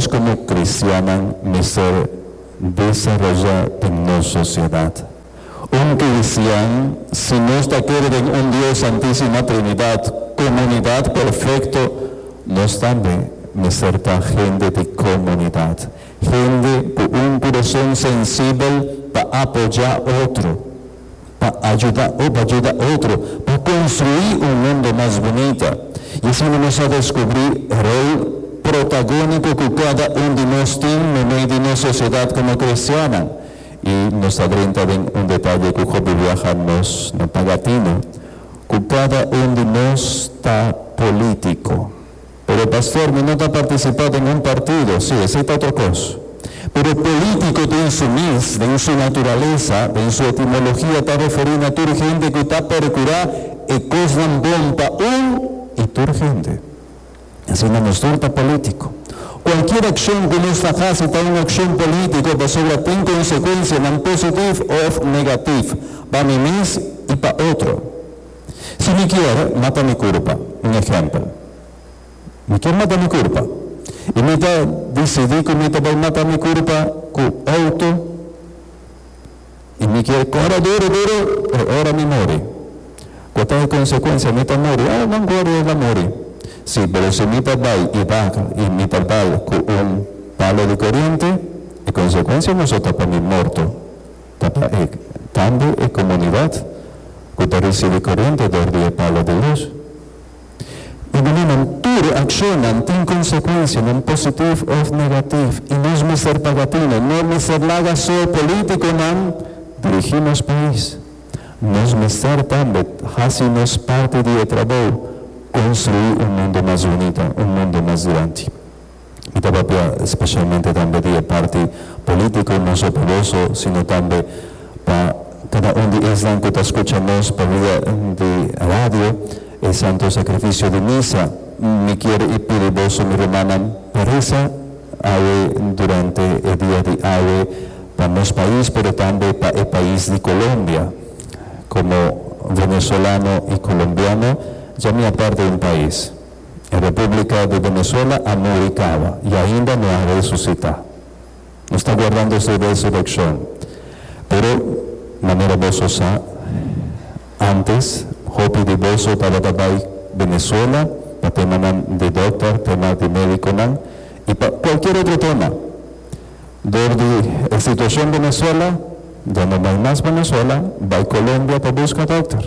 Nos komo kristiannan mester desaroyá den nos sosiedat un kristian. Si nos ta kere den un Dios, Santísima Trinidat, komunidat perfekto, nos tambe mester ta hende di komunidat, hende ku un kurason sensibel pa apoyá otro. pa ajuda o pa juda otro pa konstruí un mundo mas bunita. I asina nos ta deskubrí rol protagóniko ku kada un di nos tin na mei di nos sosiedat komo kristiannan. I nos ta drenta den un detaye ku hopi biaha nos no ta gatino, ku kada un di nos ta polítiko. Pero pastor, mi no ta participá den un partido. Sí, esei ta otro cos. Pero político den su mes, den su naturalesa, den su etimologia ta referí na tur hende cu ta percurá e cosnan bon pa un y tur hende. Asina nos tur ta político. Cualkier accion cu nos ta haci ta un accion político pasobra tin consecuencianan positiv of negativ pa mi mes y pa otro. Si mi kier mata mi kurpa, un ehèmpel, mi kier mata mi kurpa i mi ta disidí ku mi ta bai mata mi kurpa ku outo i mi kier kòrda duru duru e ora mi muri, ku ta e konsekuensia? Mi ta muri? Oh, nan kòrda i a la muri. Sí, pero si mi ta bai i bakal i mi ta bal ku un palo di koriente, e konsekuensia moso ta pa mi morto. ta pa e tambe e komunidat ku ta risibi korente dor di e palo di lus. I mane nan tur akshonnan tin konsekuensia, nan positiv òf negativ, i nos mester paga tine. No mester laga so polítikonan dirigí nos pais. Nos mester tambe hasi nos parti di e trabou, konstruí un mundu mas bunita, un mundu mas dilanti. Mi ta papia especialmente tambe di e parti politico, no so pa boso, sino tambe pa cada un di esnan cu ta scucha nos pa via di radio, e santo sacrificio di misa. Mi kier y pidi boso, mi rumannan, pa reza awe durante e dia di awe pa nos pais, pero tambe pa e pais di Colombia. Como venezolano y colombiano, dja mi a parti un pais. E Republica di Venezuela a muri kawa y ainda no a resucita. Nos ta guardando su resurreccion. Pero, manera boso sa, antes hopi di boso tabata bay Venezuela pa temanan di dokter, tema di mediconan y pa cualkier otro tema. Dor di e situacion Venezuela, ya no bay mas Venezuela, bay Colombia pa busca dokter.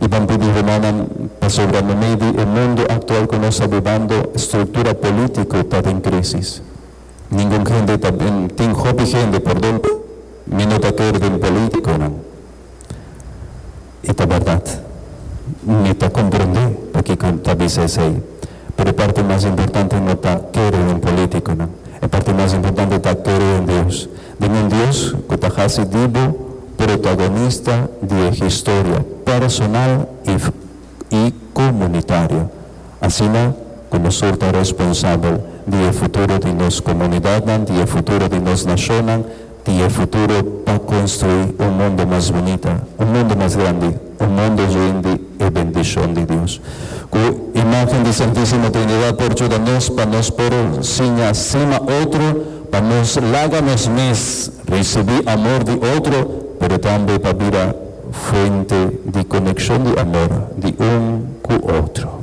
I ban pidi rumannan pasobra no meidi e mundu aktual ku nos ta bibando struktura polítiko ta den krísis. Ningun hende ta bin, tin hopi hende, perdon, mi no ta kere den polítikonan. I ta bèrdat. Mi ta komprendé pakiko ta bisa esei. Pero e parti mas importante no ta kere den polítikonan. E parti mas importante ta kere den Dios. Di nan Dios cu ta haci di bo protagonista di e historia personal y comunitario, asina cu nos sur ta responsabel di e futuro di nos comunidadnan, di e futuro di nos nacionnan, di e futuro pa construi un mundo mas bunita, un mundo mas grandi. un mundo yen di e bendishon di Dios cu imagen di Santisimo Trinidad por juda nos pa nos por siña sima otro, pa nos laga nos mes ricibi amor di otro, pero tambe pa bira fuente di coneccion di amor di un cu otro.